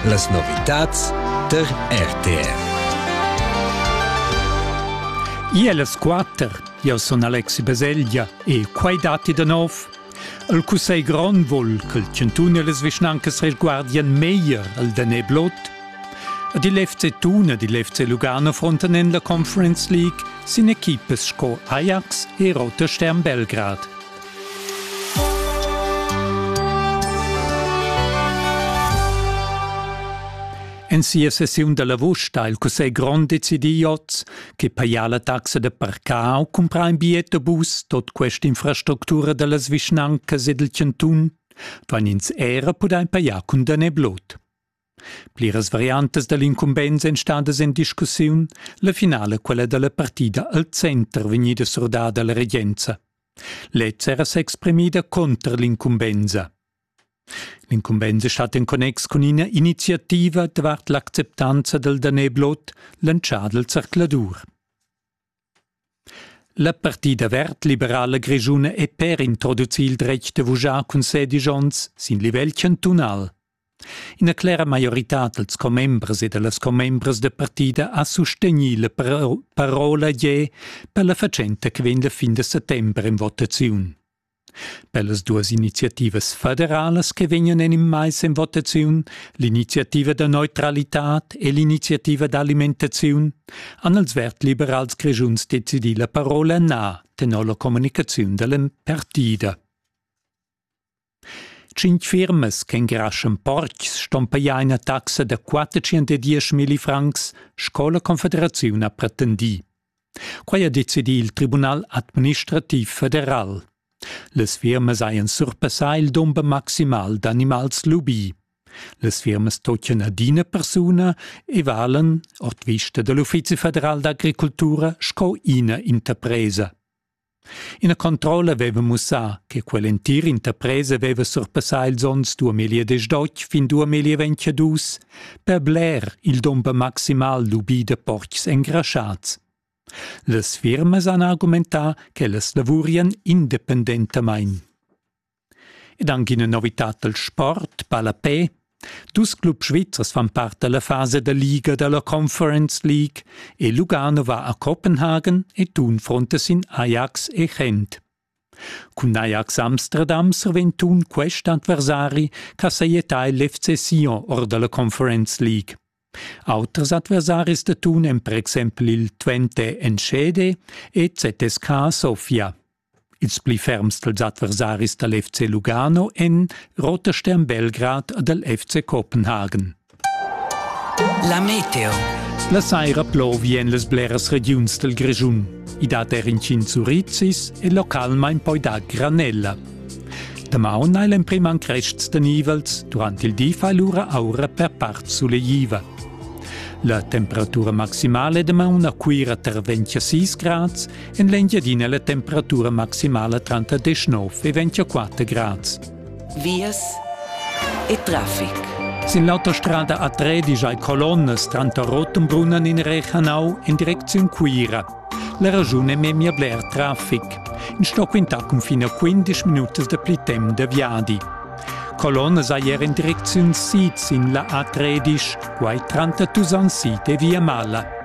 Las novitads tar RTR. Ia las quatter, jau sun Alexi Baselgia e quai datti da nov. El cussegl grond vul ch'il chantun e les vischnancas reguardien meglier al danè blot. Ed il FC Thun ed il FC Lugano frontan en la Conference League sin equipas sco Ajax e Roter Stern Belgrad. En sia sessiun da lavur sta il Cussegl grond decidir oz che pajar la taxa da parcar u cumprar in bigliet da bus tot questa infrastructura dallas vischnancas ed il cantun duain ins era pudair pajar cun dan e blut. Pliras variantas dall'incumbensa ein stadas en discussiun, la finala quella dalla partida al center vegnida surdada alla regenza. Lez era s'exprimida conter l'incumbensa. L'incumbensa stat en connex cun ina iniziativa davart l'acceptanza dal daneblot lantschà dal zercladur. La partida verd-liberala grischuna è per introducir il dretg da vuschar cun sedisch onns sin livel chantunal. Ina clera maioritad dals commembers e da las commembras da partida ha sustegnì la parola ier per la fatschenta che vegn da fin da settember en votaziun. Per las duas iniziativas federalas che vegnan en il mais en votaziun, l'iniziativa da neutralitad e l'iniziativa d'alimentaziun, han els verd-liberals grischuns decidì la parola na tenor la communicaziun da la partida. Cinc firmas che ingraschan portgs ston pajar ina taxa da 410 francs, sco la Confederaziun ha pretendì. Quai ha decidì il Tribunal administrativ federal. Las firmas hajan surpassà il dumber maximal d'animals lubì. Las firmas tochen adina persuna e valen, ord vista dall'Uffizi federal d'agricultura, sco ina interpresa. Ina controlla veva mussà che quell'entir interpresa veva surpassà ils onns duamilliadesch dotg fin duamillaventadus per bler il dumber maximal lubì da portgs engraschads. Las firmas han argumentà ch'ellas lavurian independentamain. Ed anc ina novitad dal sport, ballapè. Dus clubs svizzers fan part da la fasa da liga da la Conference League e Lugano va a Kopenhagen e tun fronte sin Ajax e Gent. Cun Ajax Amsterdam survegn tun quest adversari ch'a sajetà l'FC Sion or da la Conference League. Auters adversaris da tun èn per exempel il Twente Encede e ZSK Sofia. Ils pli ferms dals adversaris dal FC Lugano èn Rotherstern Belgrad ed el FC Kopenhagen. La meteo. La saira plovien las bleras regiuns dal Grischun. I dat er incints urizis e localmain poi dar granella. Damaun hai l'emprim han crests da nivels, durant il di fa lura aura per part sulegliva. La temperatura maximale damaun a Cuira terventia 6 grads En l'Engiadina la temperatura maximala tranter 19 e 24 grads. Vias e traffic. Sin l'autostrada A3 digiai colonnas tranter Rotenbrunnen in Rechanau en direcziun Cuira. La ragiun è memia bler traffic. In stock ventà cunfin a 15 minutas da pli temp da viadi. Colonnas hai er in direcziun sid sin la A13, quai tranter Tusan Sid e Via Mala.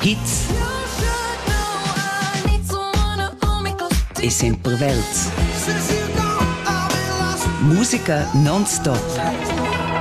Hits e sempre Welts. Musica non stop.